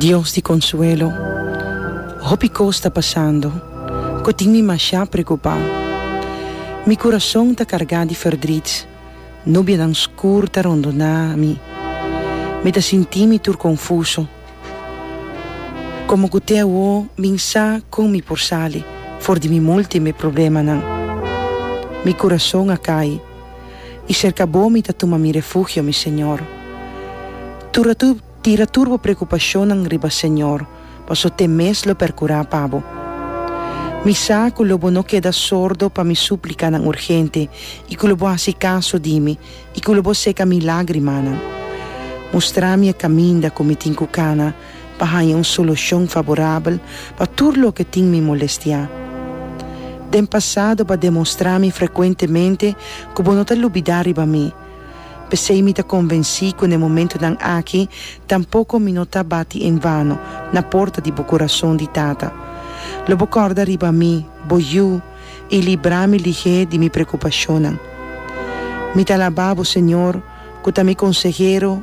Dios di konsuelo, hopi kos ta pasando ku tin mi masha preokupá. Mi kurason ta kargá di fèrdrit, nubianan skur ta rondoná mi, mi ta sinti mi tur konfuso. Komo ku te awo bin sa kon mi por sali for di mi multiple problemanan? Mi kurason a kai. i serka bo mi ta tuma mi refugio, mi Señor. Tur a tur tira tur bo preokupashonnan riba Señor, paso te mes lo perkurá pa bo. Mi sa ku lo bo no keda sordo pa mi súplikanan urgente i ku lo bo hasi kaso di mi i ku lo bo seka mi lágrimanan. Mustrá mi e kaminda ku mi tin ku kana, pa haña un solushon faborabel pa tur loke tin mi molestiá. Den pasado b'a demostrá mi frekuentemente ku bo no ta lubidá riba mi, p'esei mi ta konvensí ku n'e momentunan aki tampoko mi no ta bati en vano na porta di bo kurason di tata. Lo bo kòrda riba mi, bo yu, i librá mi lihé di mi prekupashonnan. Mi ta alabá bo, Señor, ku ta mi konsehero,